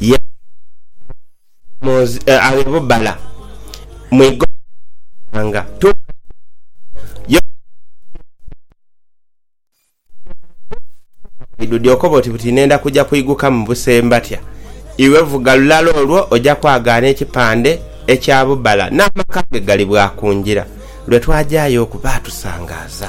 yali aghemoozi aghe bubala mu igomba ly'ebyanga tuuka lya Yopa. Yali aidhudhie okoba oti buti nenda kuja kuiguka mu buse mbatya. Iwe vuga lulala olwo oja kwagaana ekipande ekya bubala n'amaka ge gali bwa ku ngira. Lwe twajayo oku baatusangaaza.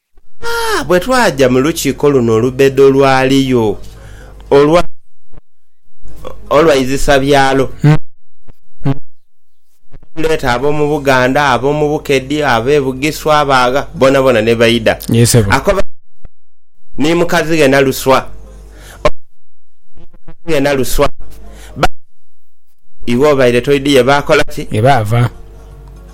Aa, bwe twaja mu lukiiko luno olubedo lwaliyo olwa, olwa izisa byalo, netuleeta ab'omu Buganda, ab'omu Bukedi, ab'e Bugiswa, abaagha, boonaboona ni baidha. Ako ba, ni mukazi ghe naluswa, oba, ni mukazi ghe naluswa, ba, iwe obaire toidhiye baakola ki? Baava.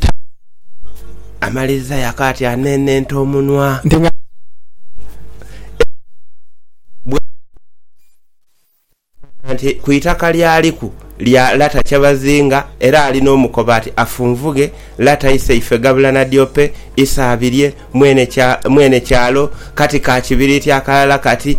Tabba amaliriza yako ati anenenta omunwa nti nga alinze ekizibu bwatyo bwamanya nti ku itaka lyaliku lya lata Kyabazinga era ali n'omukoba ati afunvughe lata iseife Gabula Nadiope Isaabirye mwene kyalo kati ka kibiriiti akalala kati